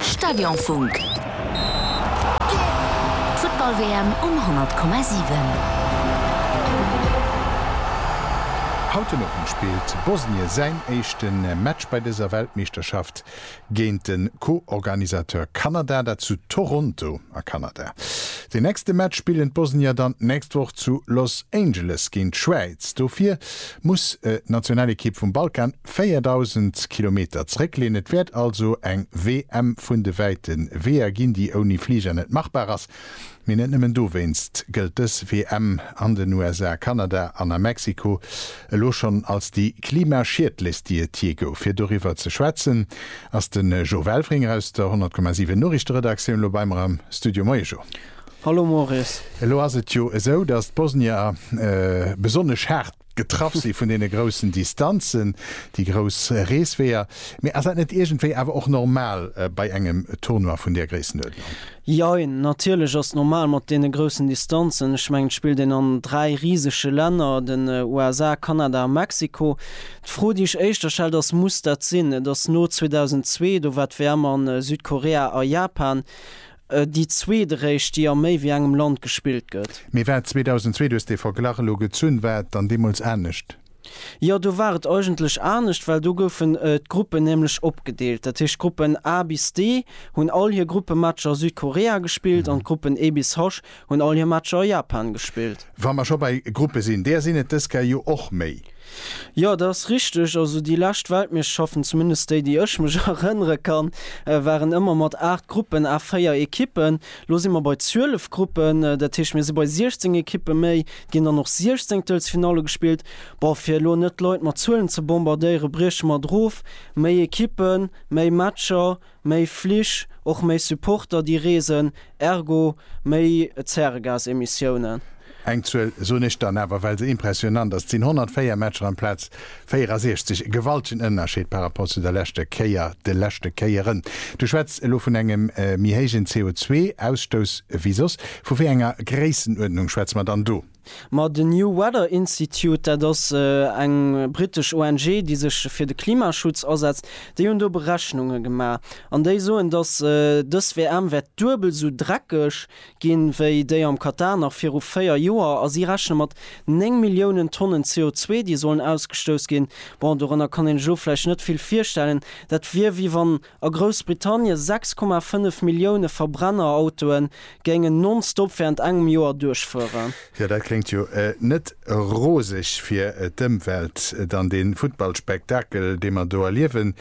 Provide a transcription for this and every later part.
Stadionfunk, d'Futtball-WM um 100,7. Haut den Owend spillt Bosnien säin éischte Match bei dëser Weltmeeschterschaft géint de Co-Organisateur Kanada, dat zu Toronto a Kanada. Deen nächste Match spillen d'Bosnier dann d'nächst Woch zu Los Angeles géint d'Schwäiz. Dofir muss d'Nationalekipp vum Balkan 4.000 Kilometer zréckleen. Et wäert also eng WM vun de wäite Weeër ginn, déi ouni Fliger net machbar ass. Mee net nëmmen dowéinst gëllt dës WM an den USA, Kanada an a Mexiko elo schonn als déi klimaschiedlechst, déi et jee gouf. Fir doriwwer ze schwätzen, ass de Jo Welfringer aus der 100,7 Noriichteredaktioun elo bei mer am Studio. Moie Jo. Hallo Maurice. Elo ass et jo esou, datt d'Bosnier besonnesch haart getraff si vun deene groussen Distanzen, déi grouss Reesweeër, mee ass dat net iergendwéi awer och normal bei engem Tournoi vun där Gréissenuerdnung? Jein, natierlech ass normal mat deene groussen Distanzen. Ech mengen, et spillt een an dräi risege Länner, den USA, Kanada a Mexiko. D'Fro, déi ech éischter stellt, ass, Muss dat sinn? Et ass no 2002, do war d'WM a Südkorea a Japan. Déi zweeteréischt, déi a méi wéi engem Land gespillt gëtt. Mee wat, 2002, du hues dee Verglach elo gezunn, war et dann deemools anescht? Jo, do war et eigentlech anescht, well do goufen d'Gruppen nämlech opgedeelt. Dat heescht, d'Gruppen A bis D hunn all hir Gruppematcher a Südkorea gespillt an d'Gruppen E bis H Hunn all hir Matcher a Japan gespillt. Wa mer scho bei Gruppe sinn, där sinn et dës Kä jo och méi. Jo, dat ass richteg. Also déi lescht Weltmeeschterschaften, zumindest déi, déi ech mech erënnere kann, waren ëmmer mat 8 Gruppen à 4 Ekippen. Elo si mer bei 12 Gruppen, dat heescht, mir si bei 16 Ekippe méi. Et ginn dann och Siechzéngtelsfinalle gespillt. Bon, fir elo net d'Leit mat Zuelen ze bombardéieren, brieche mer et erof, Méi Ekippen, méi Matcher, Méi Flich, och méi Supporter déi reesen, ergo méi Zäregasemissiounen. Eng Zuel soen ech dann awer, well se impressionnant ass, Et sinn 104 Matcher amplaz 64. E gewaltegen Ënnerscheed par rapport zu der leschter Kéier, de leschte Kéieren. Du schwätz elo vun engem méi héijen CO2-Ausstouss ewéi soss. Vu wéi enger Gréissenuerdnung schwätze mer dann do? Ma den New Weather Institute, dat ass eng britesch ONG, déi sech fir de Klimaschutz asetzt, déi hunn do Berechnunge gemaach an déi soen, datt dës WM wäert duebel esou dreckeg ginn, wéi déi am Katar nach viru véier Joer. A si rechne mat néng Milliounen Tonnen CO2, déi sollen ausgestouss ginn. Bon, dorënner kann een sech elo vläicht net vill virstellen. Dat wier, wéi wann A Groussbritannien 6,5 Millioune Verbrennerautoe géingen non-stop wärend engem Joer duerchfueren. Jo, dat kléngt jo net roseg fir d'Ëmwelt. Dann dee Futtballspektakel, dee mer do erliewen.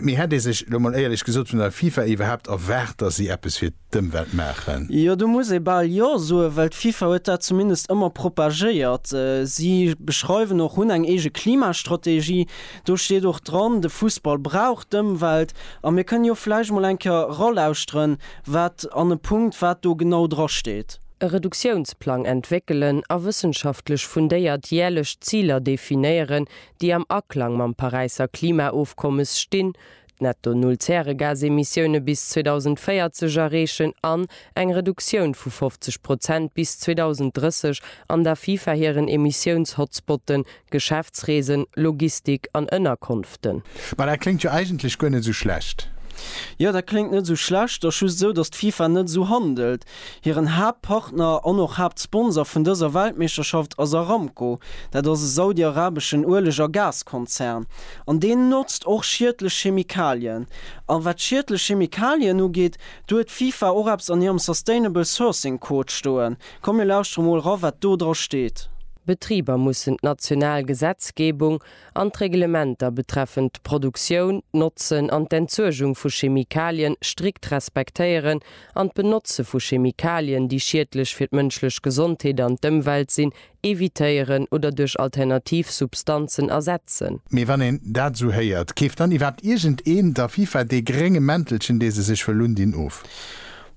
Mee hätt ee sech, elo mol éierlech gesot, vun der FIFA iwwerhaapt erwaart, datt si eppes fir d'Ëmwelt maachen. Jo, do muss ee bal Jo soen, well d'FIFA huet dat zumindest ëmmer propagéiert. Si beschreiwen och, hunn eng eege Klimastrategie, do steet och dran, de Fussball brauch d'Ëmwelt. A mir kënnen jo vläicht mol eng Kéier eralauschteren, wat an e Punkt wat do genau dra steet. E Reduktiounsplang entwéckelen a wëssenschaftlech fundéiert järlech Ziler definéieren, déi am Aklang mam Paräisser Klimaofkommes stinn, Netto Null Zäregasemissioune bis 2040 erreechen an eng Reduktioun vu 50 Prozent bis 2030 an der FIFA hiren Emissiouns-Hotspotten, Geschäftsreesen, Logistik an Ënnerkonften. Ma dat kléngt jo eigentlech guer net esou schlecht. Jo, dat kléngt net esou schlecht. Ass just esou, datt d'FIFA net esou handelt. Hiren Haaptpartner an och Haaptsponsor vun dëser Weltmeeschterschaft ass Aramco. Dat ass e saudiarabeschen Ueleg a Gaskonzern. An deen notzt och schiedlech Chemikalien. A wat schiedlech Chemikalien ugeet, do huet d'FIFA och eppes an hirem Sustainable Sourcing Code stoen. Komm mir lauschtere mol ra wat do dra steet. Betriber mussen d'national Gesetzgebung an d'Reglementer betreffend d'Produktioun, d'Notzen an d'Entsuergung vu Chemikalien strikt respektéieren an d'Benotze vu Chemikalien, déi schiedlech fir d'mënschlech Gesondheet an d'Ëmwelt sinn, evitéieren oder duerch alternativ Substanzen ersetzen. Mee wann een dat esou héiert, keeft dann iwwerhaapt iergendeen der FIFA dee grénge Mäntelchen, dee se sech wëll undinn, of?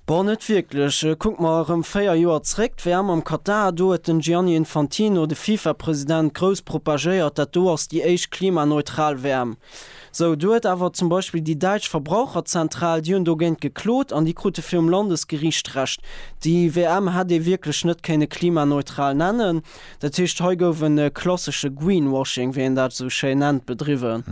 Bon net wierklech, kuck mer erëm 4 Joer zréck, d'WM am Katar, do huet den Gianni Infantino, de FIFA-President, grouss propagéiert, dat do ass déi éischt klimaneutral WM. Sou, do huet awer zum Beispill déi däitsch Verbraucherzentral, déi hunn dogéint geklot an déi krute virum Landesgeriicht Recht. Déi WM hätt ee wierklech net kéinne klimaneutral nennen. Dat heescht, hei gouf e klassesche Greenwashing, wéi een dat esou schéin nennt, bedriwwen.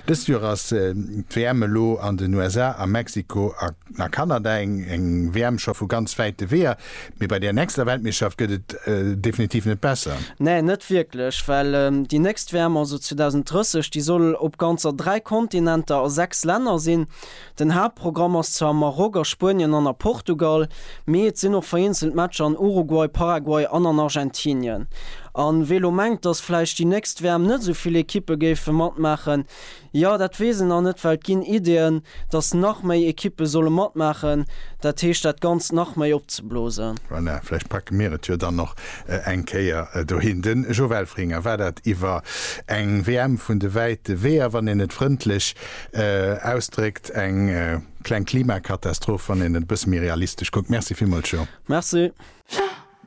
Dëst Joer ass d'WM elo an den USA, a Mexiko a Kanada. Eng WM scho vu ganz wäite Weeër, mee bei där nächster Weltmeeschterschaft gëtt et definitiv net besser. Nee, net wierklech, well déi nächst WM, also 2030, déi soll op ganzer dräi Kontinenter a sechs Länner sinn. Den Haaptprogramm ass zwar am Maroc, a Spuenien an a Portugal, mee et sinn och vereenzelt Matcher an Uruguay, Paraguay an an Argentinien. A wee lo mengt, datt vläicht déi nächst WM net esou vill Ekippe géife matmaachen, jo, dat weess een nach net, well et ginn Ideeën, datt nach méi Ekippe solle matmaachen, dat heescht dat Ganzt nach méi opzeblosen. Voilà, vläicht packe mir et jo dann och eng Kéier dohin. De Jo Welfringer, war dat iwwer eng WM vun de wäite Weeër, wann een et frëndlech Ausdréckt, eng kleng Klimakatastroph, wann een et e bësse méi realistesch kuckt. Merci villmools, Jo. Merci.